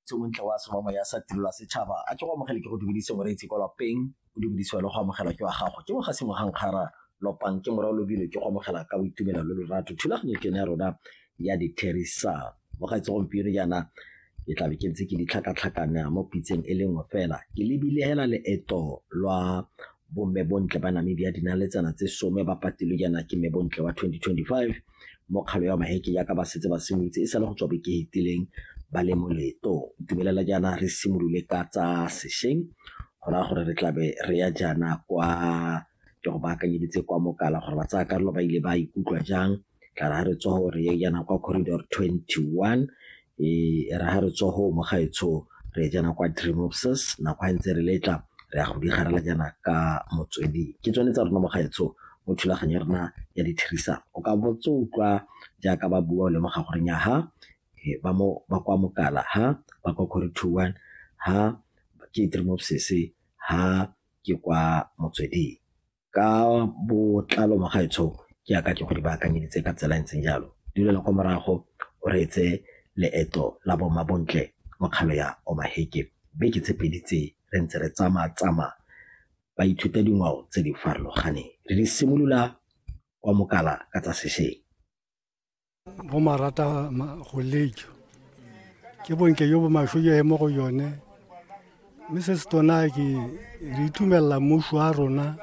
tse o ntle wa semamo ya sa tirelo ya setšhaba a ke go amogele ke go dumedise moreetsi kwa lapeng o dumedisiwa le go amogela ke wa gago ke moga sengwe ga nkgara lopang ke morao lobile ke go amogela ka boitumelo le lorato thulaganyo ke ne ya rona ya ditherisan mogaetse gompieno jaana ke tla be ke ntse ke ditlhakatlhakana mo pitseng e le nngwe fela ke lebile hela leeto lwa bomme bontle ba namibia dinaletsana tse some ba patilwe jaana ke mme bontle wa 2025 mokgalo ya maheke jaaka ba setse ba simolotse e sale go tswa beke fetileng ba le mo leetong itumelela jaana re simolole ka tsa sešweng go raya gore re tlabe re ya jaana kwa ke go baakanyeditse kwa mokala gore ba tsaya karolo ba ile ba ikutlwa jang tla re ga re tswa gore ye jaana kwa corridor 21 e re ha re tswa go mo gaetsho re e jana kwa dream obses nako ga ntse re letla re ya go di garela jana ka motswedi ke tsone tsa rona mo gaetsho mo thulaganyo ya rona ya dithirisano o ka botse utlwa jaaka ba bua o lemoga gore nya ha ba mo ba kwa mokala ha ba kwa kore two one ha ke dream obses ha ke kwa motsweding ka botlalo ba gaetsho ke aka ke go di baakanyeditse ka tsela e ntseng jalo di lela kwa morago o reetse leeto la boma bontle mo kgalo ya omaheke beke tse pedi tse re ntse re tsamaya tsamaya ba ithuta dingwao tse di farologaneng re di simolola kwa mokala ka tsa sešeng go marata go lejo ke bonke yo bo masho yo mo go yone mme se se tona ke re itumelela mmuso wa rona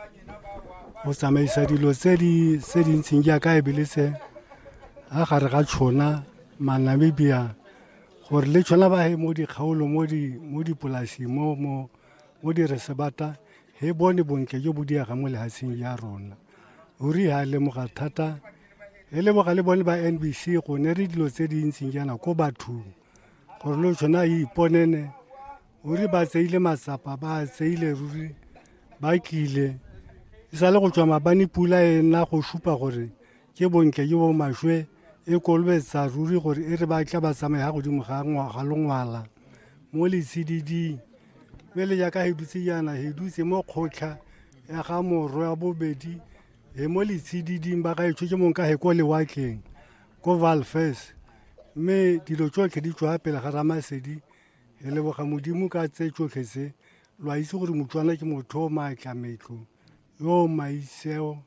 go tsamaisa dilo tse di tse di ntseng jaaka e bile se a gare ga tšhona manamibia gore le tšhona ba he mo dikgaolo mo di mo dipolasing mo mo mo diresebata he bone bontle jo bo diega mo lehatsheng ya rona o ri ha lemoga thata e lemoga le bone ba nbc go ne re dilo tse di ntseng jaana ko bathong gore lo tshwane a iponene o re ba tseile matsapa ba tseile ruri ba tlile e sa le go tswa mabane pula e nna go supa gore ke bontle jo bo maswe e kolobetsa ruri gore e re ba tla ba tsamaye ga godimo ga ngwaga longwala mo letshididing mme le jaaka he dutse jaana he dutse mo kgotlha ya ga morwe wa bobedi e mo letshididing ba ka itsho ke mong ka he ko lewatleng ko valfes mme dilo tsotlhe di tswa pele ga ramasedi re leboga modimo ka tse tsotlhe tse lo a itse gore motswana ke motho o maatla metlo yo o maitseo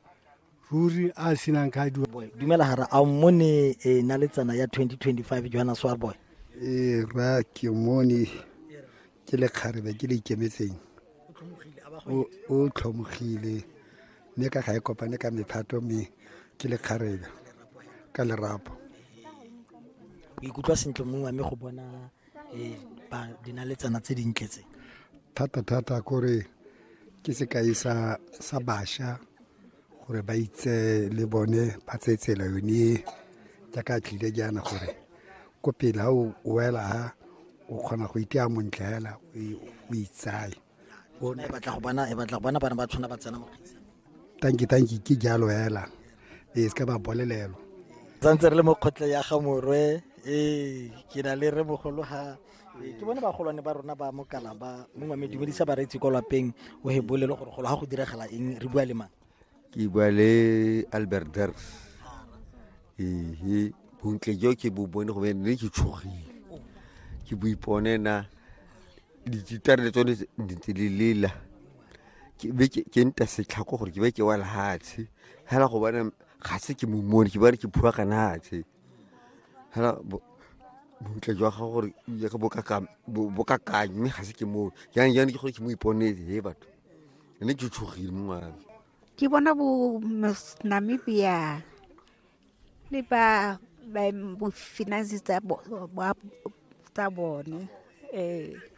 ruri a senang ka diwa Boy, dumela hara a mmone e na le tsana ya 2025 johanna swarboy ee ra ke mone ke lekgarebe ke le ikemetseng o tlhomogile mme ka ga e kopane ka mephato mme ke lekgarebe ka lerapo o ikutlwa sentle mong wa me go bona eh, dinaletsana tse dintle tse thata-thata kore ke sekai sa basha gore ba itse le bone ba tseye tsela yone e jaaka tlile jaana gore ko pele ga o wela ha o kgona go itea montle fela o itsaye e batla go bona e batla go bona bana ba tshwana ba tsena mo tanki tanki ke jalo fela e se ka ba bolelelo tsantse re le mo kgotle ya ga morwe ee ke na le re mogolo ga ee, ke bone bagolwane ba rona ba mokala ba mongwe me dumedisa bareetsi kwa lapeng o he bolele gore golo ga go diragala eng re bua le mang ke bua le albert derks ee bontle jo ke bo bone go ne ke tshogile ke bo ipone na dititare le tsone ntse le lela ke nta setlhako gore ke be ke wa lehatshe fela go bona ga se ke momone ke bone ke phua ka natshe fela bontle jwa gago gore ya ka bokakang mme ga se ke moo jang jang ke gore ke mo iponetse he batho ne ke tshogile mo ngwana ke bona bo namibia le ba bo finance tsa bone um